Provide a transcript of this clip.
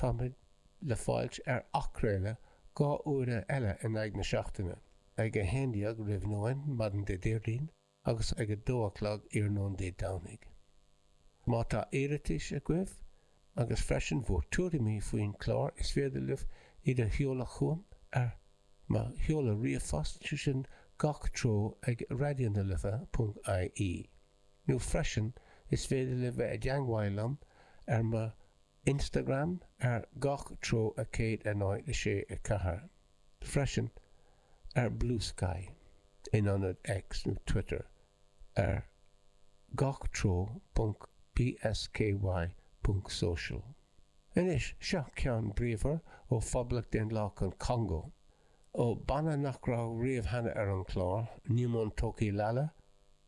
Táimid le fáilt ar athchraoladh dhá uaire eile in aghaidh na seachtaine, ag 11 roimh nóin maidin Dé Déardaoin agus ag 2 a chlog iarnóin Dé Domhnaigh. Má tá iarratais agaibh, agus freisin bhur tuairimí faoin chlár is féidir libh iad a sheoladh chugam ar mo sheoladh ríomhphost, sé sin gach treo ag radionalife.ie, nó freisin is féidir libh bheith i dteagmháil liom ar mo. Instagram ar gach treo a 106 4 freisin ar Bluesky in ionad X nó Twitter ar gach treo ponc bsky ponc social. Anois, seo ceann bríomhar ó Phoblacht Dhaonlathach an Chongó, ó bhanna nach raibh riamh cheana ar an chlár, Nyumontokilala,